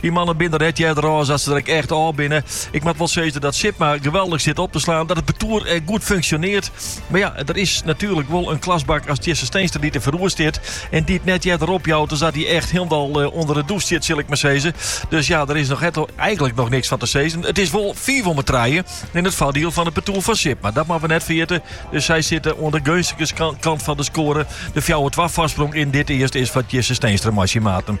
Dy mannen binne net earder ôf as dat se der ek echt ôf binne. Ik moat wol sizze dat Sipma geweldig sit op te slaan, dat it partoer ek goed funksjonearret. Mar ja, der is natuerlik wol in klasbak as Tjisse Steenstra dy't der foaroer stiet en dy't net earder opjout as dat hy echt hielendal ûnder de dûs stiet, sil ik mar sizze. Dus ja, der is eigenlik noch niks fan te sizzen. It is wol fiif om 'e trije yn it foardiel fan it partoer fan Sipma, dat moatte we net ferjitte. Dus sy sitte oan de geunstige kant fan de skoare. De fjouwer twa foarsprong yn dit earst is foar Tjisse Steenstra mei syn maten.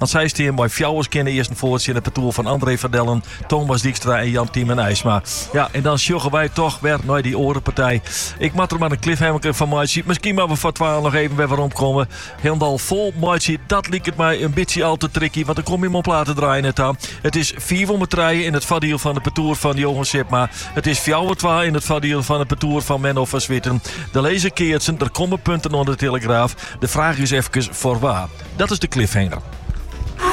En sy steane mei fjouwer skjinne earsten foar tsjin it partoer fan André van Dellen, Thomas Dijkstra en Jan Tymen Eisma. Ja, en dan sjogge wy toch wer nei dy oare partij. Ik moat der mar in cliffhanger fan meitsje. Miskien moatte we foar twaen noch even wer weromkomme. Hielendal fol meitsje, dat liket my in bytsje al te tricky, want dan komme we oan platen draaien net ta. It is fiif om 'e trije yn it foardiel fan it partoer fan Johan Sipma. It is fjouwer twa in it foardiel fan it partoer fan Menno van Zwieten. Der lizze keatsen, der komme punten oan de telegraaf. De fraach is efkes foar wa. Dat is de cliffhanger.